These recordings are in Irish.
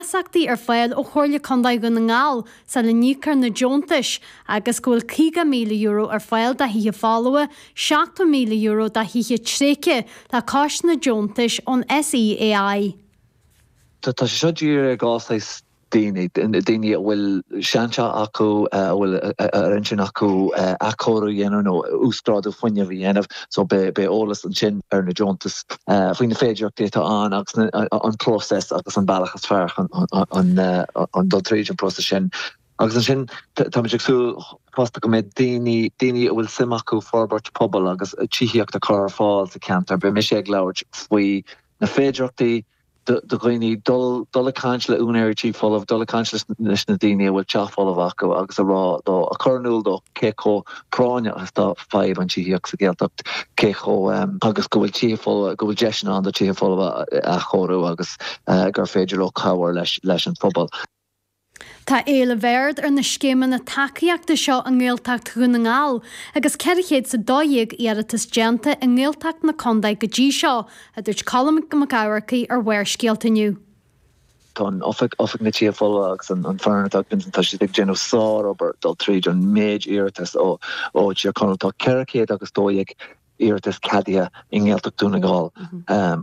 iasachtaí ar fáil ó Chomhairle Contae Dhún na nGall sula n-íocfar na deontais agus go bhfuil €50,000 ar fáil do thithe folmha, €70,000 do thithe tréigthe le cois na deontais ón SEAI. Tá sé seo dírithe ar dhá shaghas daoine, daoine a bhfuil seanteach acu a bhfuil ar intinn acu athchóiriú a dhéanamh nó uasghrádú fuinnimh a dhéanamh, so beidh eolas ansin ar na deontais faoi na féidireachtaí atá ann agus an próiseas agus an bealach is fearr chun dul tríd an próiseas sin. Agus ansin tá muid ag súil fosta go mbeidh daoine, daoine a bhfuil suim acu forbairt pobail agus tithíocht a chur ar fáil sa cheantar. Beidh mise ag labhairt faoi na féidireachtaí do dhaoine dul dul ag caint le úinéirí tí folamh, dul ag caint leis leis na daoine a bhfuil teach folamh acu agus a rá dó, a chur in iúl dó cé chomh práinneach is atá fadhb an tithíocht sa Ghaeltacht, cé chomh agus go bhfuil tithe folmha go bhfuil deiseanna ann do tithe folmha a athchóiriú agus gur féidir leo cabhair leis leis an phobal. Tá éileamh ard ar na scéimeanna tacaíochta seo i nGaeltacht Dhún na nGall agus 412 iarratas déanta i nGaeltacht na contae go dtí seo, a dúirt Colm Mac Eachmharcaigh ar Bharrscéalta inniu. Tá an oifig, Oifig na Tithe Folmha agus an foireann atá ag Vincent, tá siad ag déanamh sár-obair dul tríd an méid iarratas ó Thír Chonaill. Tá ceithre chéad agus dó dhéag iarratas ceadaithe i nGaeltacht Dhún na nGall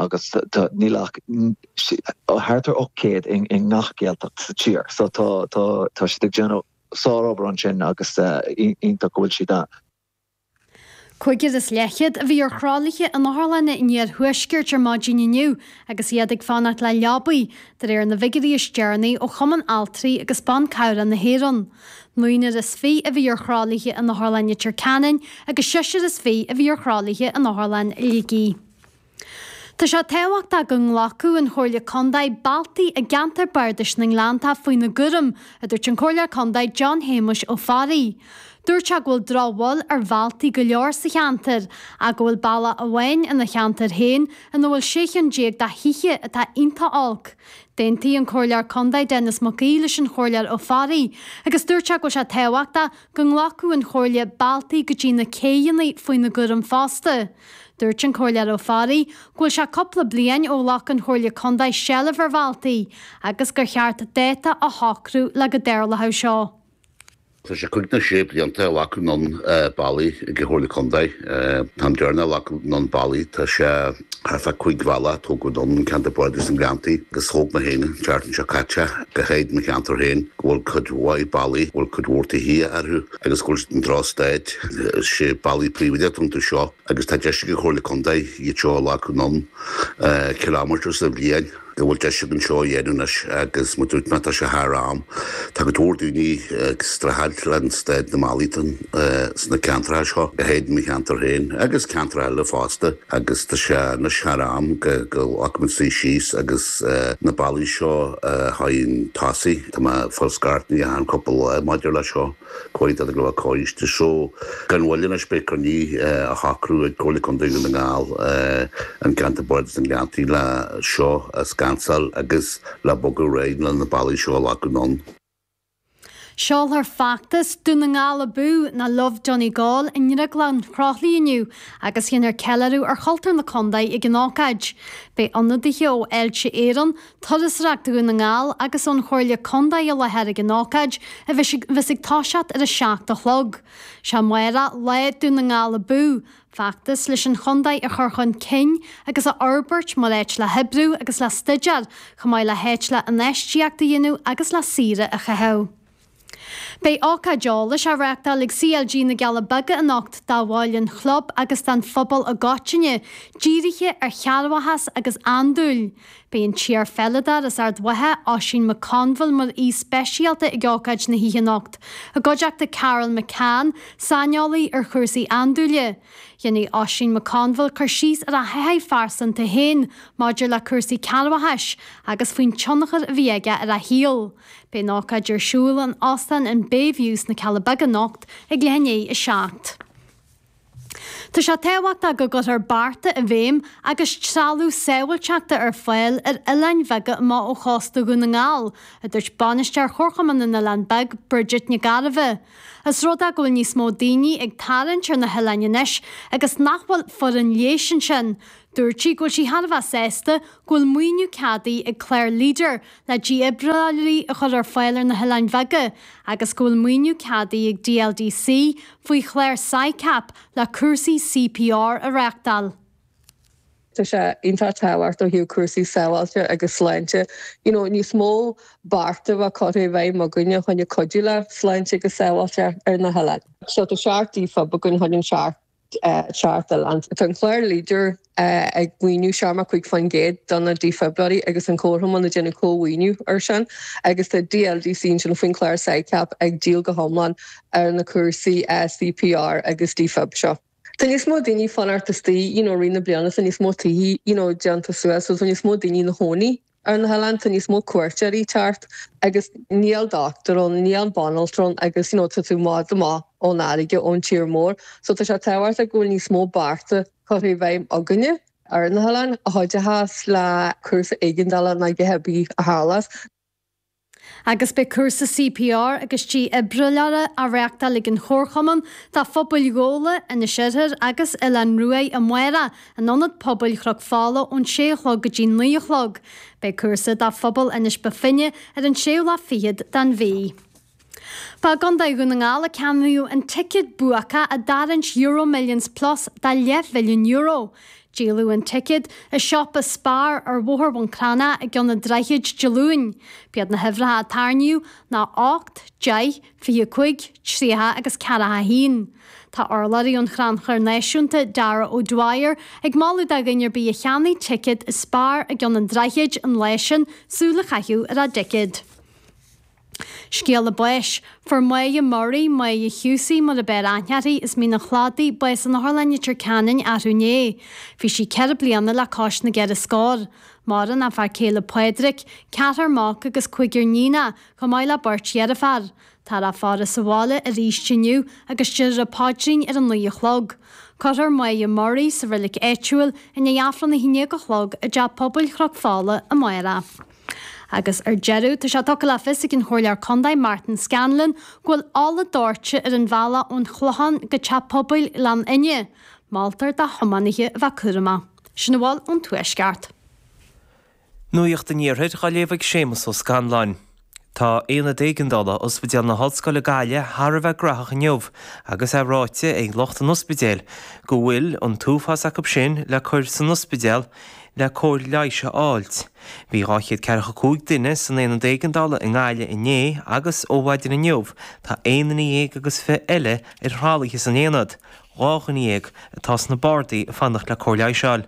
agus níl ach thart ar 800 i ngach Gaeltacht sa tír so tá siad ag déanamh sárobair ansin agus iontach go bhfuil siad ann. Cúigear is leathchéad a bhí ar thralaithe in otharlanna an iarthuaiscirt ar maidin inniu agus iad ag fanacht le leabaí, de réir na bhfigiúirí is deireanaí ó Chumann Altraí agus Ban Cabhrach na hÉireann. Naonúr is fiche a bhí ar thralaithe in Otharlann Leitir Ceanainn agus seisear is fiche a bhí ar thralaithe in Otharlann Shligigh. Tá sé tábhachtach go nglacfadh an Chomhairle Contae bealtaí i gCeantar Bardais na nGleanntach faoina gcúram, a dúirt an Comhairleoir Contae John Shéamais Ó Fearraigh. Dúirt sé go bhfuil drochbhail ar bhealtaí go leor sa cheantar ach go bhfuil bealach amháin ina cheantar féin ina bhfuil sé cheann déag de thithe atá iontach olc. D'aontaigh an Comhairleoir Contae Denis Mac Aoidh leis an Chomhairleoir Ó Fearraigh agus dúirt sé go bhfuil sé tábhachtach go nglacfadh an Chomhairle bealtaí go dtí na céidheanna faoina gcúram fosta. Dúirt an Comhairleoir Ó Fearraigh go bhfuil sé cúpla bliain ó ghlac an Chomhairle Contae seilbh ar bhealtaí agus gur cheart dáta a shocrú le go dtarlódh seo. Tá sé cúig nó sé blianta ó glacadh anonn bealaí ag an Chomhairle Contae. An t-am deireanach a glacadh anonn bealaí, tá sé thart fá chúig bhealach a tógadh anonn, i gCeantar Bardais na nGleanntaí agus thóg mé féin an tseachtain seo caite, go háirid mo cheantar féin go bhfuil cuid mhaith bealaí a bhfuil cuid mhór tithe orthu agus go bhfuil siad i ndrochstáid. Is é bealaí príobháideach atá iontu seo agus tá deis ag an Chomhairle Contae iad seo a ghlacadh anonn ciliméadar sa bhliain. go bhfuil deis againn seo a dhéanamh anois agus muid ag tnúth, tá sé thar am. Tá go leor daoine ag streachailt le staid na mballaí sna ceantracha seo, leithéid mo cheantar féin agus ceantracha eile fosta agus tá sé anois thar am go nglacfaidh muid seo suí síos agus na ballaí seo chun tosaigh, tá mé ag foscailt na ndoirse don phobal maidir le seo. Caint a dhéanamh leis an choiste seo gan mhoill anois beidh cruinniú á shocrú ag Comhairle Contae Dhún na nGall i gceantar bardais na nGleanntaí le seo a scansáil agus le bogadh ar aghaidh le na ballaí seo a leagan anonn. Seolfar feachtas Dún na nGall Abú ná Love Donegal i nDrioglann Chroithli inniu agus dhéanfar ceiliúradh ar chultúr na contae ag an ócáid. Beidh ionadaithe ó Fháilte Éireann, Turasóireacht Dhún na nGall agus ón Chomhairle Contae i láthair ag an ócáid, a bheas ag toiseacht ar a seacht a chlog. Sé mar atá Lá Dún na nGall Abú! feachtas leis an chontae a chur chun cinn agus a fhorbairt mar áit le hoibriú agus le staidéar, chomh maith le háit le infheistíocht a dhéanamh agus le saoire a chaitheamh. Beidh ócáid eolais á reáchtáil ag CLG na gCealla Beaga anocht do bhaill an chlub agus don phobal i gcoitinne, dírithe ar chearrbhachas agus andúil. Beidh an t-iarpheileadóir as Ard Mhacha, Oisín McConville mar aoi speisialta ag ócáid na hoíche anocht, i gcuideachta Carol McCann, saineolaí ar chúrsaí andúile. Dhéanfaidh Oisín McConville cur síos ar a thaithí phearsanta féin maidir le cúrsaí cearrbhachais agus faoin tionchar a bhí aige ar a shaol. Beidh an ócáid ar siúl in Óstán an Bayview sna Cealla Beaga anocht ag leath i ndiaidh a seacht. Tá sé tábhachtach go gcuirfear bearta i bhfeidhm agus trealamh sábháilteachta ar fáil ar oileáin bheaga amach ó chósta Dhún na nGall, a dúirt Bainisteoir Chomharchumann na nOileán Beag, Bridget Nic Gairbheith. ós rud é go bhfuil níos mó daoine ag tarraingt ar na hoileáin anois agus nach bhfuil foireann leighis ansin. Dúirt sí go bhfuil sí thar a bheith sásta go bhfuil maoiniú ceadaithe ag clár Leader le dífhibrileoirí a chur ar fáil ar na hoileáin bheaga agus go bhfuil maoiniú ceadaithe ag DLDC faoi chlár SICAP le cúrsaí CPR a reáchtáil. Tá sé iontach tábhacht ó thaobh cúrsaí sábháilte agus sláinte you know níos mó bearta bheith curtha i bhfeidhm againn fá choinne cuidiú le sláinte agus sábháilte ar na hoileáin. So tá seacht defib againn fá choinne an seacht. Tá an clár Leader, ag maoiniú 75% do na dífhibrileoirí agus an comharchumann ag déanamh comh-mhaoiniú ar sin agus tá DLDC ansin faoin chlár SICAP ag díol go hiomlán ar na cúrsaí CPR agus Defib seo. Tá níos mó daoine fán áit, is tá, you know, i rith na bliana tá níos mó tithe, you know, déanta suas so tá níos mó daoine ina chónaí. Ar na hoileáin tá níos mó cuairteoirí ag teacht agus níl dochtúir ann, níl banaltra ann agus you know tá tú i bhfad amach ón fharraige, ón tír mór. So tá sé tábhachtach go bhfuil níos mó bearta curtha i bhfeidhm againne. Ar na hoileáin a chuideochas le cúrsaí éigeandála nó cibé a tharlas. agus beidh cúrsa CPR agus dífhibrileora á reáchtáil ag an Chomharchumann do phobail Ghabhla, Inis Oirthir agus Oileán Uaighe amárach in Ionad Pobail Chnoc Fola ón sé a chlog go dtí naoi a chlog. Beidh cúrsa do phobal Inis Bó Finne ar an séú lá fichead den mhí. Ba i gContae Dhún na nGall a ceannaíodh an ticéad buacach i dtarraingt Euro Millions Plus de leathmhilliún euro. Díoladh an ticéad i siopa Spar ar Bhóthar Bhun Cranncha i gCeann an Droichid Dé Luain. B'iad na huimhreacha a tarraingíodh ná 8, 10, 25, 30 agus 41. Tá urlabhraí ón Chrannchur Náisiúnta, Darragh O'Dwyer, ag moladh do dhuine ar bith a cheannaigh ticéad i Spar i gCeann an Droichid an lá sin súil a chaitheamh ar a dticéad. Scéala Báis, Fuair Moya Murray, Moya Husey, Mulabel Ahnyarhi, is Mín an Chladaigh, bás in Otharlann Leitir Ceanainn, arú inné. Bhí sí ceithre bliana le cois na gceithre scór. Maireann a fear céile Pádraic, ceathrar mac agus cúigear níonacha, chomh maith le beirt dheirfiúr. Tá a faire sa bhaile aríst inniu agus déarfar an paidrín ar a naoi a chlog. Cuirfear Moya Murray sa reilig áitiúil i ndiaidh Aifreann a haon déag a chlog i dTeach Pobail Chnoc Fola amárach. Agus ar deireadh, tá sé tugtha le fios ag an Chomhairleoir Contae Martin Scanlon go bhfuil ola dóirte ar an bhealach ón Chlochán go Teach Pobail Ghleann Fhinne. Moltar do thiománaithe a bheith cúramach. Sin a bhfuil ón Tuaisceart. Nuacht an Iarthair á léamh ag Séamus Ó Scanláin. Tá Aonad Éigeandála Ospidéal na hOllscoile Gaillimh thar a bheith gnaitheach inniu agus é ráite ag lucht an ospidéil go bhfuil an t-uafás acu sin le cur san ospidéal le cóir leighis a fháilt Bhí dhá chéad ceathracha cúig duine san Aonad Éigeandála i nGaillimh inné agus ó mhaidin inniu tá aon duine déag agus fiche eile ar thralaithe san aonad, dhá dhuine dhéag atá sna bardaí ag fanacht le cóir leighis a fháil.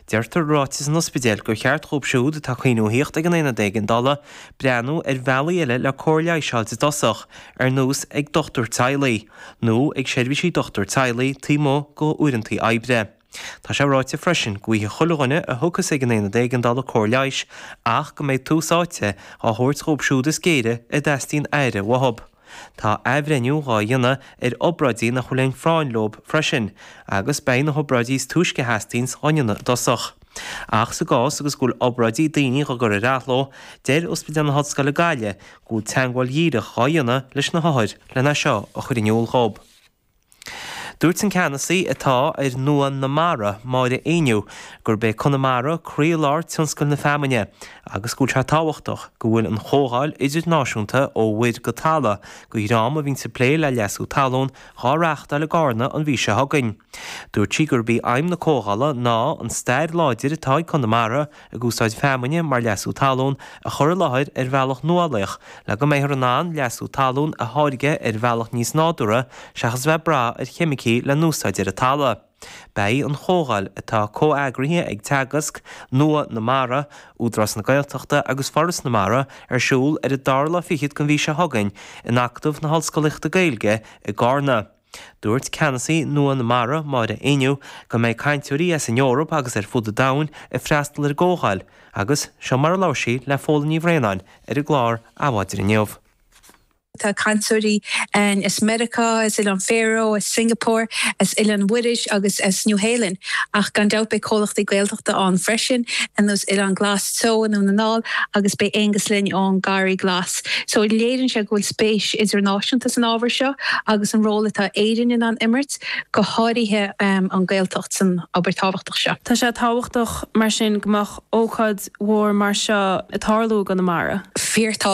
Deirtear i ráiteas an Ospidéil gur cheart dhóibh siúd atá ag cuimhniú a thíocht ag an Aonad Éigeandála breathnú ar bhealaí eile le cóir leighis a fháil i dtosach, ar nós ag dochtúir teaghlaigh, nó ag seirbhísí dochtúir teaghlaigh taobh amuigh de uaireantaí oibre. Tá sé ráite freisin go bhfaighidh chuile dhuine a thiocfas ag an Aonad Éigeandála cóir leighis ach go mbeidh tús áite á thabhairt dhóibh siúd is géire a dteastaíonn aire uathu. Tá athbhreithniú dhá dhéanamh ar obráidí nach bhfuil aon phráinn leob freisin agus beidh na hobráidí is túisce a theastaíonns dhá ndéanamh i dtosach. Ach sa gcás agus go bhfuil obráidí daoine dhá gcur ar athló, deir Ospidéal na hOllscoile Gaillimh go bhfuil teagmháil dhíreach dhá dhéanamh leis na hothair lena seo a chur in iúl dhóib. Dúirt an ceannasaí atá ar Nua na Mara, Máire Ní Éinniú, gurb é Conamara croílár tionscail na feamainne agus go bhfuil sé tábhachtach go bhfuil an chomhdháil idirnáisiúnta Ó Mhuir go Talamh go Greim a bhíonns ag plé le leasú talún dhá reáchtáil i gCarna an mhí seo chugainn. Dúirt sí gurb í aidhm na comhdhála ná an stair láidir atá ag Conamara ag úsáid feamainne mar leasú talún, a chur i láthair ar bhealach nuálaíoch le go mbeifear in ann leasú talún a tháirgeadh ar bhealach níos nádúrtha seachas a bheith ag brath ar cheimicí le n-úsáid ar an talamh. Beidh an chomhdháil, atá comheagraithe ag Teagasc, Nua na Mara, Údarás na Gaeltachta agus Foras na Mara, ar siúl ar an dara lá fichead den mhí seo chugainn in Acadamh na hOllscolaíochta Gaeilge i gCarna. Dúirt Ceannasaí Nua na Mara, Máire Ní Éinniú, go mbeidh cainteoirí as an Eoraip agus ar fud an domhain ag freastal ar an gcomhdháil agus seo mar a labhair sí le Fódhla Ní Bhraonáin ar an gclár Adhmhaidin inniu. Tá cainteoirí ann as Meiriceá, as Oileáin Fharó, as Singapore, as Oileán Mhuirís agus as Nua-Shéalainn ach gan dabht beidh comhlachtaí Gaeltachta ann freisin ar nós Oileán Glas Teo i nDún na nGall agus beidh Aengus linn ón Garraí Glas. So léirionn sé go bhfuil spéis idirnáisiúnta san ábhar seo agus an ról atá Éirinn in ann imirt, go háirithe an Gaeltacht, san obair tábhachtach seo. Tá sé tábhachtach mar sin go mbeadh ócáid mhór mar seo ag tarlú i gConamara. Fíor